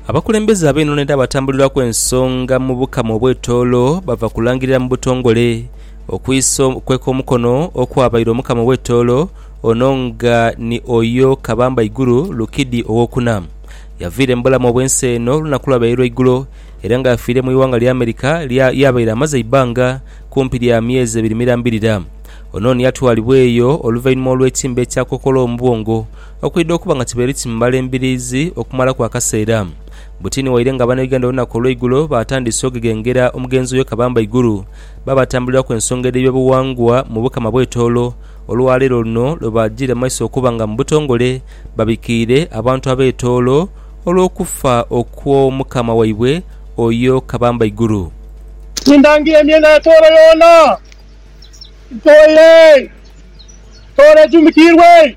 Abakulembeze ab'enhonho edha batambulirwaku ensonga mu Bukama obw'etoolo bava kulangirira mu butongole okwisa okweka omukono okwabaire Omukama ow'etoolo ono nga ni Oyo Kabamba Iguru Lukidi owokuna yaviire mu bulamu obw'ensi eno olunaku olwabaire lwa igulo era nga afiire mu ighanga lya America yabaire amaze eibbanga kumpi lya myezi ebiri mirambirira. Onon yatwalibwa eyo oluvainhuma olw'etimba ekya kokola omu bwongo Okwidha okuba nga kibaire kimubala embiriizi okumalaku akaseera, butini waire nga Abanayuganda olunaku olweigulo baatandise ogeghengera omugenzi oyo Kabamba Iguru baabatambuliraku ensonga edh'ebyobuwangwa mu Bukama bw'etoolo olwaleero luno lwe baajiire mu maiso okuba nga mu butongole babikiire abantu ab'etoolo olw'okufa okw'Omukama waibwe oyo Kabamba Iguru. Nindangira emyenda y'etoolo yoona, ntoole, ntoole ejumikiirwe.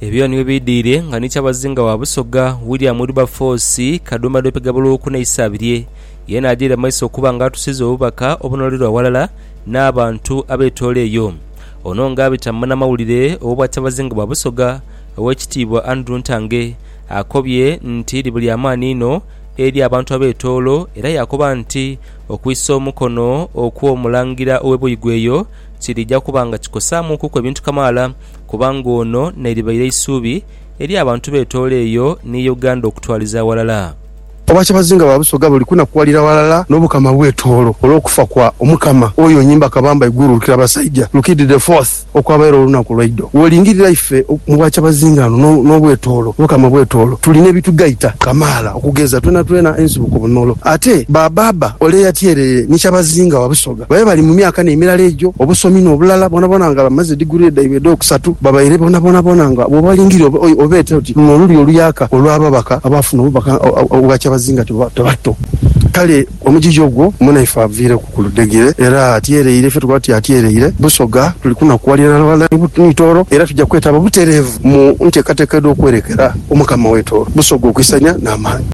Ebyo nibyo biidhiire nga ni kyabazinga wa Busoga, William Wilberforce Kadumba Lwepega Buluuku n'Eisabirye. Yeena ajaire mu maiso okuba nga atusiza obubaka obunoolera aghalala n'abantu abetoola eyo. Ono nga abita mu munamawulire ow'Obwakyabazinga bwa Busoga, Owekitiibwa Andrew Ntange, akobye nti liba lya maani inho eri abantu abetoolo era yaakoba nti, Okwisa omukono okw'omulangira ow'e Buigwe eyo kiriija kuba nga kikosaamuukuku ebintu kamaala kubanga ono n'eribaire eisuubi eri abantu b'etoolo eyo ni Uganda okutwaliza aghalala. Obwakyabazinga bwa Busoga buli kunakuwalira ghalala n'Obukama bw'etoolo olw'okufa kwa Omukama oyo Nyimba Kabamba Iguru Lukirabasaija Rukidi the Fourth. Okwabaire olunaku lwaidho wolingirira ife mu bwakyabazinga ghano n'obwetoolo, Mukama bwetoolo tulina ebitugaita kamaala okugeza twenatwena ensibuko mu Nolo. Ate ba baaba ole eyatyereire ni kyabazinga wa Busoga babe bali mu myaka n'emirala egyo obusomi n'obulala bwonabwona nga bamaze diguree dhaibwe edh'okusatu babaire bonabonabona nga bwobalingirira obeete oti luno olulyo oluyaka olw'ababaka abaafuna obubaka obwa kyabazinga tebatto kale Omugigi ogwo munaife aviireku ku ludhegere era atyereire. Ife tukoba tuti atyereire Busoga. Tuli kunakuwalira na balala ni Tooro era tuja kwetaba butereevu mu nteekateeka edh'okwerekera Omukama w'e Tooro, Busoga okwisanya n'amaani.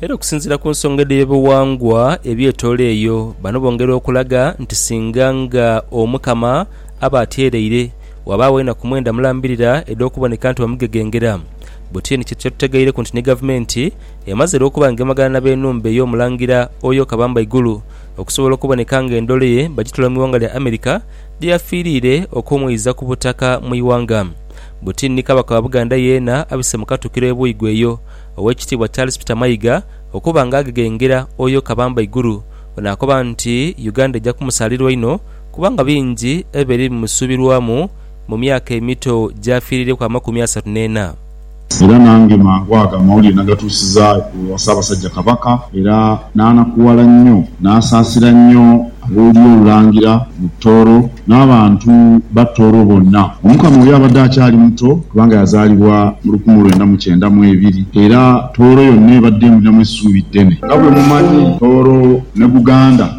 Era okusinziira ku nsonga edh'eby'obuwangwa eby'e Tooro eyo, bano bongera okulaga nti singa nga Omukama aba atyereire, wabaagho enaku mwenda mulambirira edh'okuboneka nti bamugegengera. Bwe tyo ni kye tutegaireku nti ni Gavumenti Emaze lwo okuba ng'emagana na b'enhumba ey'omulangira oyo Kabamba Igulu okusobola okuboneka ng'endhole ye bagitwala mu ighanga lya America lye yafiiriire okumwiiza ku butaka mu ighanga. Buti ni Kabaka wa Buganda yeena abise mu katukiro e Buigwe eyo Owekitiibwa Charles Peter Mayiga okuba nga agegengera oyo Kabamba Igulu onaakoba nti Uganda eja kumusaalirwa inho kubanga bingi ebibeire bimusuubirwamu mu myaka emito gy'afiiriireku amakumi asatu n'ena. Era nange mangu ago amawulire nagatuusiza ewa Ssaabasajja Kabaka, era n'anakuwala nnyo n'asaasira nnyo ab'Olulyo Olulangira mu Tooro n'abantu ba Tooro bonna. Omukama oyo abadde akyali muto kubanga yazaalibwa mu lukumi lwenda mu kyenda mu ebiri, era Tooro yonna ebadde emulinamu essuubi ddene. Nga bwe mumanyi, Tooro ne Buganda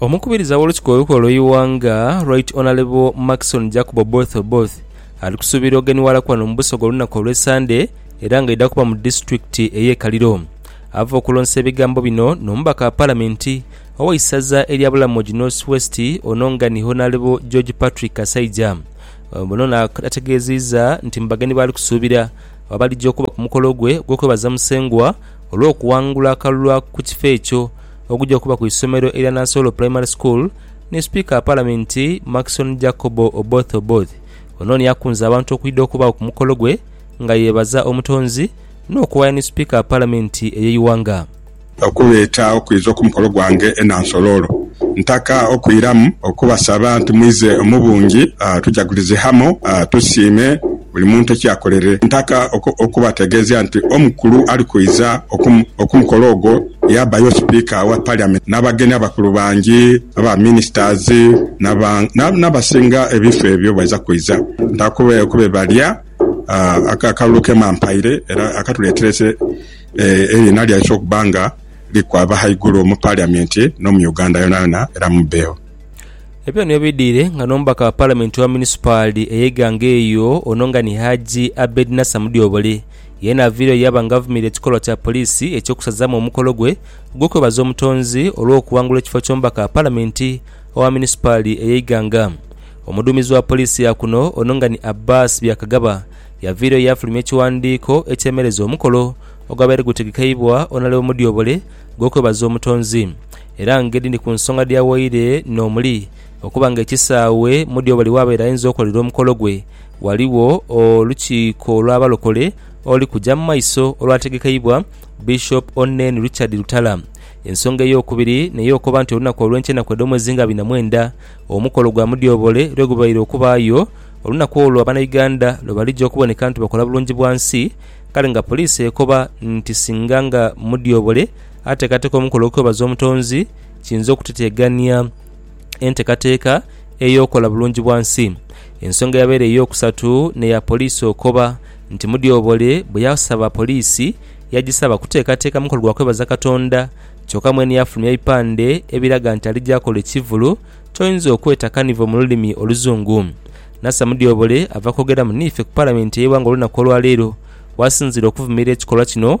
Omukubiriza w'Olukiko Olukulu olw'Eighanga, Right Honourable Markson Jacob Oboth Oboth ali kusuubirwa oghenhiwalaku wano mu Busoga olunaku olwe Sande era nga aidha kuba mu disitulikiti eye Kaliro ava okulonsa ebigambo bino n'omubaka wa palamenti ow'eisaza erya Bulamogi North West ono nga ni Honourable George Patrick Kasaija ono nga ategeziiza nti mu bagenyi baali kusuubira abalija okuba ku mukolo gwe ogw'okwebaza Musengwa olw'okuwangula akalulu ku kifo ekyo ogugya kuba ku isomero erya Nansolo Primary School ni Sipiika wa Palamenti Maxon Jacobo Oboth Oboth. Ono ni akunze abantu okwidha okubaagho ku mukolo gwe nga yeebaza Omutonzi n'okuwaaya ni Sipiika wa Palamenti ey'eighanga. Okuleeta okwidha ku mukolo gwange e Nansolo olwo ntaka okwiramu okubasaba nti mwidhe mu bungi tujagulize hamu tusiime. buli muntu ekyakolere ntaka okubategeezia nti omukulu ali kwidha okumukolo ogwo yaabayo Sipiika wa Parliament n'abageni abakulu bangi aba Ministers n'abasinga ebifo ebyo baidha kwidha ntaka okubebalya akalulu ke mampaire era akatuleetere eriina lyaife okuba nga likwaba ghaigulu mu Parliament no mu Uganda yonayona era mubbeegho. Ebyo nibyo bidhire nga n'omubaka wa palamenti owa munisipaali ey'eighanga eyo ono nga ni Haji Abed Nasser Mudyobole yeena aviireyo yaaba nga avumiira ekikolwa kya poliisi eky'okusazaamu omukolo gwe ogw'okwebaza Omutonzi olw'okuwangula ekifo ky'omubaka wa palamenti owa munisipaali ey'eighanga Omuduumizi wa poliisi ya kuno ono nga ni Abbas Byakagaba yaviireyo yaafulumya ekiwandiiko ekyemereza omukolo ogwabaire gutegekeibwa Onalebo Mudyobole ogw'okwebaza Omutonzi Era ngeri ni ku nsonga dh'awaire n'omuli okuba nga ekisaawe mu dyo buli waabaire ayinza okolerera omukolo gwe, ghaligho olukiiko lw'Abalokole oluli kuja mu maiso olwategekeibwa Bishop Onen Richard Lutala. Ensonga ey'okubiri n'ey'okoba nti olunaku olw'enkya enaku edh'omwezi nga bina mwenda omukolo gwa Mudyobole lwe gubaire okubaayo, olunaku olwo Abanauganda lwe balija okuboneka nti bakola bulungi bwa nsi, kale nga poliisi ekoba nti singa nga Mudyobole Ateekateeka omukolo gw'okwebaza Omutonzi kiyinza okuteteegania enteekateeka ey'okukola Bulungibwansi. Ensonga eyabaire ey'okusatu n'eya poliisi okoba nti Mudyobole bwe yasaba poliisi yagisaba kuteekateeka mukolo gwa kwebaza Katonda kyokka mwene yafulumya bipande ebiraga nti alija kola ekivvulu ky'oyinza okweta carnival mu lulimi Oluzungu. Nasser Mudyobole ava kwogeraamu n'ife ku Palamenti ey'eighanga olunaku olwaleero wasinziira okuvumirira ekikolwa kino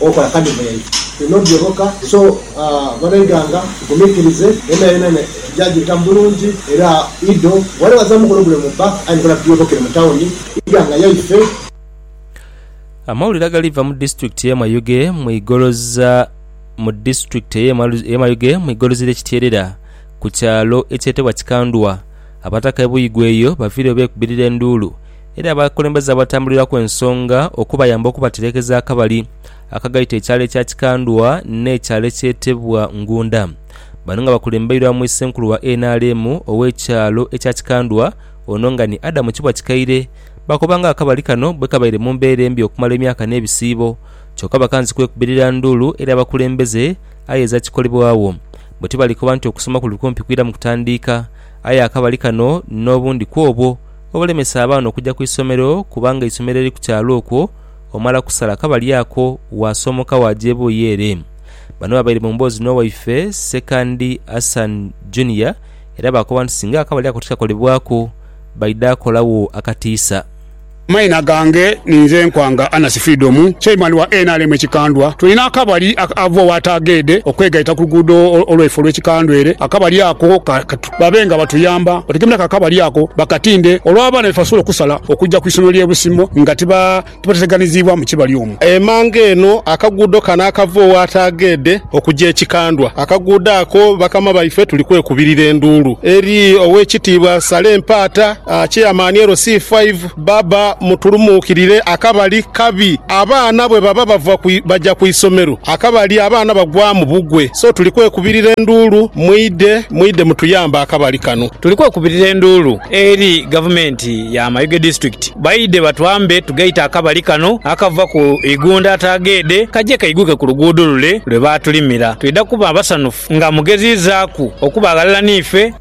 okola kale bweri bino byoboka so balegaanga tugumikirize yonayona ne tugya gita mubulungi era ido wale wazamu mukolo gule mubba aye nkola tugyobokere mu tawuni ighanga yaife. Amawulire agali va mu disitulikiti ye Mayuge mu igoloza Mu disitulikiti eye Mayuge mu igolozi lye Kityerera ku kyalo ekyetebwa Kikandwa abataka e Buyigwa eyo bavireyo bekubirira enduulu era abakulembeze abatambuliraku ensonga okubayamba okubaterekeza akabali akagaita ekyalo ekya Kikandwa n'ekyalo ekyetebwa Ngunda. Bano nga bakulembeirwamu Issenkulu wa nrm ow'ekyalo ekya Kikandwa ono nga ni Adam Kibwa Kikaire bakoba nga akabali kano bwekabaire mu mbeera embi okumala emyaka n'ebisiibo kyoka bakanze kwekubirira nduulu eri abakulembeze aye ezakikolebwagho bwetibalikoba nti okusoma kuli kumpi kwiramu kutandiika aye akabali kano n'obundi kwobwo obulemesa abaana okuja ku isomero kubanga eisomero eri ku kyalo okwo omala kusala kabali ako waasoomoka waaja ebuuyi ere. Bano babaire mu mboozi n'owaife Ssekandi Hassan Junior era baakoba nti singa akabali ako tikakolebwaku baidha kolagho akatiisa. Amaina gange ninze Nkwanga Anasi Freedom, Chairman wa nrm e Kikandwa. Tulina akabali aka ava owa Taageede okwegaita ku luguudo olwaife olw'e Kikandwa ere. Akabali ako babe nga batuyamba otegemera ako akabali ako bakatinde olw'abaana be basobola okusala okugya ku isomero ly'e Busimo nga tibateteganiziibwa mu kibali omwo. Emanga eno akaguudo kano akava ow'Ataageedhe okugya e Kikandwa, akaguudo ako bakama baife tuli kwekubirira enduulu eri Oweekitiibwa Sale Mpaata, Chairman LC5, Baba mutulumuukirire akabali kabi. Abaana bwe baba bava baja ku isomero, akabali abaana bagwamu bugwe. So tuli kwekubirira enduulu, mwidhe, mwidhe mutuyambe akabali kano. Tuli kwekubirira enduulu eri Gavumenti ya Mayuge District baidhe batwambe tugaite akabali kano akava ku Igunda Ataageedhe kaje kaiguke ku luguudo lule lwe baatulimira. Twidha kuba basanhufu nga mugeziizaaku okuba aghalala n'ife.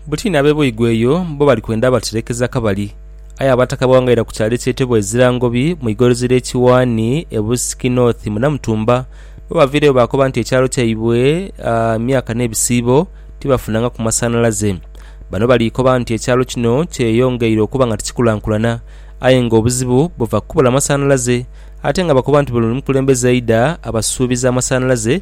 Buti n'ab'e Boigo eyo bo bali kwenda batireekeza kabali. Aye Abataka bawangaira ku kyalo ekyetebwa Ezirangobi mu igorozi ly'e Kiwaani e Busiki North mu Namutumba. Bwe baviireyo baakoba nti ekyalo kyaibwe myaka n'ebisiibo tibafunangaku masanhalaze. Bano bali koba nti ekyalo kino kyeyongeire okuba nga tikikulankulana aye ng'obuzibu buva ku kubula masanhalaze ate nga bakoba nti buli mukulembeze aidha abasuubiza amasanhalaze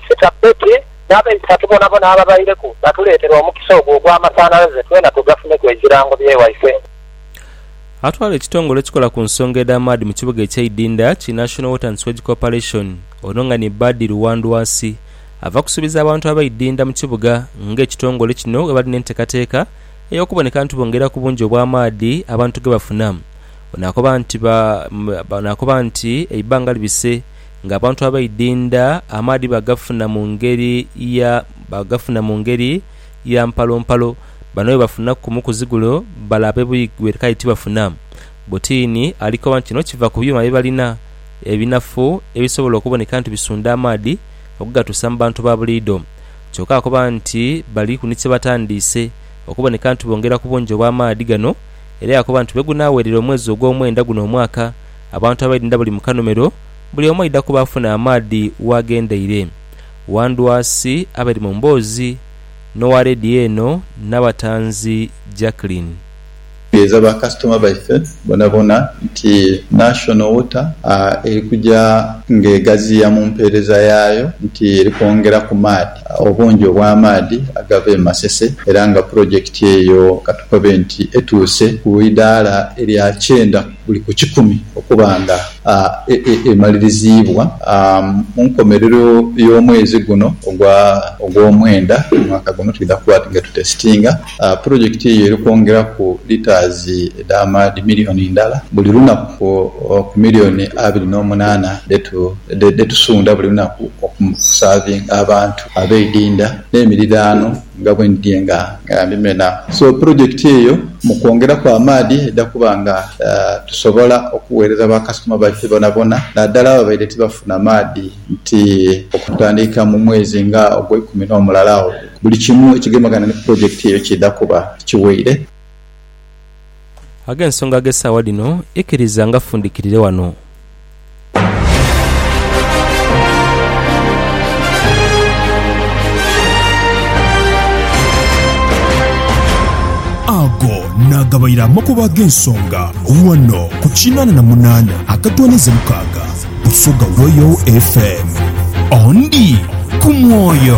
Sita Betty n'abaisatu bonabona ababaireku batuleetera omukisa ogwo ogw'amasanhalaze twena tugafuneku ekirango bye waife. Atwala ekitongole ekikola ku nsonga edh'amaadhi mu kibuga ekye Idinda ki National Water and Sewage Corporation ono nga ni Badi Luwandwasi ava kusubiza abantu aba Idinda mu kibuga nga ekitongole kino bwebali n'entekateka eyokuboneka nti bongera ku bungi obw'amaadhi abantu gebafuna Ono akoba nti eibbanga libise Ng'abantu abaidinda, amaadhi bagafuna mu ngeri ya bagafuna mu ngeri ya mpalompalo. Bano bwebafuna kumu ku zigulo bala abebuigwere kale tibafuna butiini. Alikoba nti kino kiva ku byuma byebalina ebinafu ebisobola okuboneka nti bisunda amaadhi okugatuusa mu bantu ba buliidho. Kyoka akoba nti baliku ni kyebatandiise okuboneka nti bongera ku bungi obw'amaadhi gano era yakoba nti bwegunaawerera omwezi ogw'omwenda guno omwaka, Abantu abaidinda buli mu kanomero, buli omu aidha kuba afuna amaadhi w'agendeire. Wandwasi abaire mu mboozi n'owa leediyo eno n'abatanzi Jacklin. Tutegeeza ba kasitoma baife bonabona nti National Water eri kuja ng'egaziya mu mpeereza yaayo nti eri kwongera ku maadhi, obungi obw'amaadhi agava e Masese era nga pulojekiti eyo katukobe nti etuuse ku idaala erya kyenda. buli ku kikumi okuba nga emaliriziibwa mu nkomerero y'omwezi guno ogw'omwenda omwaka guno. Twidha kuba nga tutesitinga pulojekiti eyo eri kwongeraku litaazi edh'amaadhi miriyoni ndala buli lunaku ku miriyoni abiri n'omunaana dhe tusunda buli lunaku okusavinga abantu abeidinda n'emiriraano. nga bwe ndidhie nga ndimena. So pulojekiti eyo mu kwongeraku amaadhi eidha kuba nga tusobola okughereza bakasitoma baife bonabona naddala ababaire tibafuna maadhi nti okutandika mu mwezi nga ogweikumi n'omulala awo buli kimu ekigemagana ni pulojekiti eyo kiidha kuba kiweire. ag'ensonga ag'esaawa dhino, ikiriza ngafundikirire wano. Ago naagabaire amakubo ag'ensonga wano ku kinaana na munaana akatooneza mukaaga Busoga Royal FM. Ondi ku mwoyo.